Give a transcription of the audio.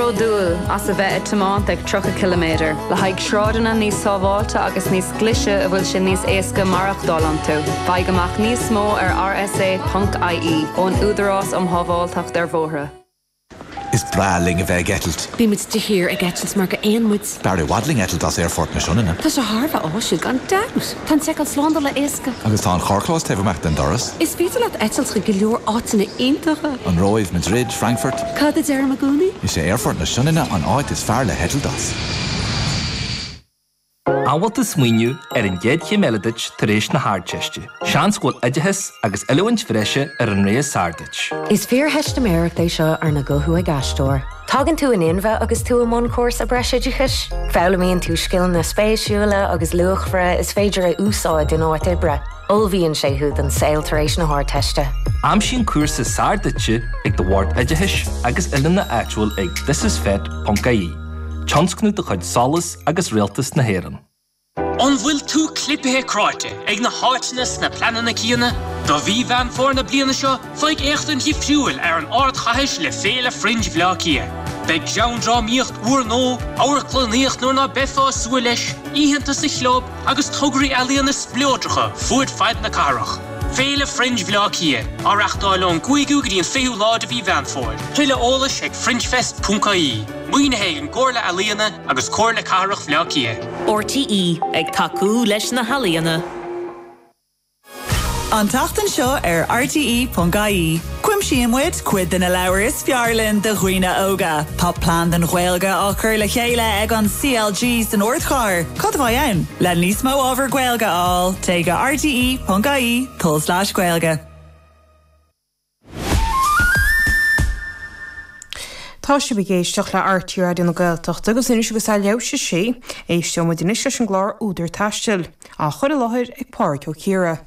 bródúil as a bheith ag tiomáint ag 30 ciliméadar le haghaidh sráideanna níos sábháilte agus níos glaise a bhfuil sé níos éasca maireachtáil iontu. Faigh amach níos mó ar rsa.ie ón Údarás um Shábháilteacht ar Bhóithre. Is breá linn a bheith ag eitilt. Bímid de shíor ag eitilt mar gur éin muid. B'fhearr i bhfad linn eitilt as Aerfort na Sionainne. Tá sé thar a bheith áisiúil, gan dabht. Tá an tseiceáil slándála éasca. Agus tá an carrchlós taobh amach den doras. Is féidir leat eitilt chuig go leor áiteanna iontacha. An Róimh, Madrid, Frankfurt. Cad a deirim i gcónaí? Is é Aerfort na Sionainne an áit is fearr le heitilt as. An bhfuil tú ag smaoineamh ar an gcéad chéim eile duit tar éis na hArdteiste. Seans go bhfuil oideachas agus oiliúint bhreise ar an rogha is fearr duit. Is fíortheistiméireacht é seo arna guthú ag Aisteoir. Tagann tú in inmhe agus tú i mbun cúrsa breisoideachais. Foghlaimíonn tú scileanna spéisiúla agus luachmhara is féidir a úsáid in áit oibre. Ullmhaíonn sé thú don saol tar éis na hArdteiste. Aimsigh an cúrsa is fearr duitse ag do Bhord Oideachais agus Oiliúna áitiúil ag thisisfet.ie, tionscnamh de chuid solas agus Rialtas na hÉireann. An bhfuil tú clipithe cráite ag na háiteanna is na pleananna céanna? Do mhí Mheán Fómhair na bliana seo, faigh éachtaint dhifriúil ar an ardchaithis le Féile Fringe Bhleá Cliath. Beidh greann, drámaíocht, úrnó, amharclannaíocht in áit ná beifeá ag súil leis, oícheanta sa Chlub agus tograí ealaíona spleodracha fud fad na cathrach. Féile Fringe Bhleá Cliath, á reachtáil ón gcúigiú go dtí an fichiú lá de mhí Mheán Fómhair. Tuilleadh eolais ag fringefest.ie. Maoinithe ag an gComhairle Ealaíon. agus Comhairle Cathrach Bhleá Cliath. RTÉ ag tacú leis na healaíona. An tseachtain seo ar RTÉ.ie, aimsíonn muid cuid de na leabhair is fearr linn do dhaoine óga. Tá Plean don Ghaeilge á cur le chéile ag an CLG san Ardchathair. Cad a bheidh ann? Le níos mó ábhar Gaeilge a fháil, téigh go rte.ie/gaeilge. Tá sibh ag éisteach le RTÉ Raidió na Gaeltachta agus anois agus é leath i ndiaidh a sé, éisteoimid anois leis an gclár Údar Taistil, á chur i láthair ag Pádhraic Ó Ciardha.